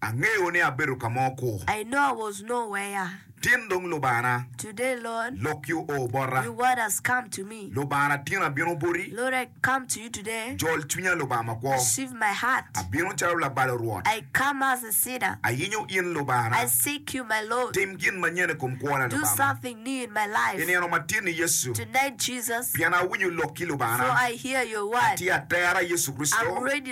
Angeyo ni abedo ka mo kur. I know I was no where. Tin dong Lubana. Today Lord. Lok yo o bota. Your word has come to me. Lubana tin abino boti. Lord I come to you today. Jol cwinya Lubanga makwo. Receive my heart. Abino calo labalo Rwot. I come as a sinner. Ayinyo in Lubana. I seek you my Lord. Tim gin manyen i kom kwona Lubanga. Do something new in my life. I nino ma tin ni Yecu. Tonight Jesus. Pien awinyo lokki Lubana. For I hear your word. Atye atera Yecu Kricito. I'm ready.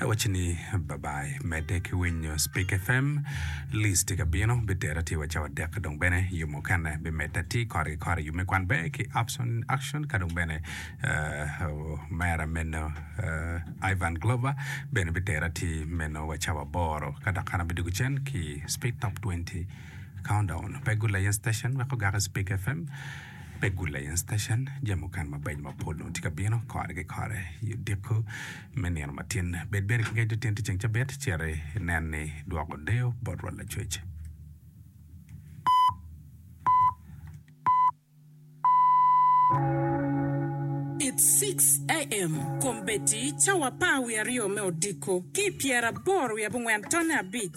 Awacci ni bye bye. Medde ki winyo Spik FM. Liz tye ka bino. Bitera tye wa cawa dek dong bene yo mukene bimedda ti kore ki kore. Yub me kwan ber ki Upson in Action ka dong bene Omera meno Ivan Glover bene bitera ti meno wa cawa aboro. Ka dok an abidwogo cen ki Spik Top 20 Countdown. Pe gul layen station wek ogaki Spik FM. Pe gul lain station, jami mukene mabeco mapol dong tye ka bino kore ki kore i odiko me nino matin. Bed bene ki ngec nitin ti ceng cabit, cit inen ni idwoko deyo bot rwot lacwec. It 6 AM kombeddi cawa apar wiye aryo me odiko ki i pyeraboro wiye abongwen tonne abic.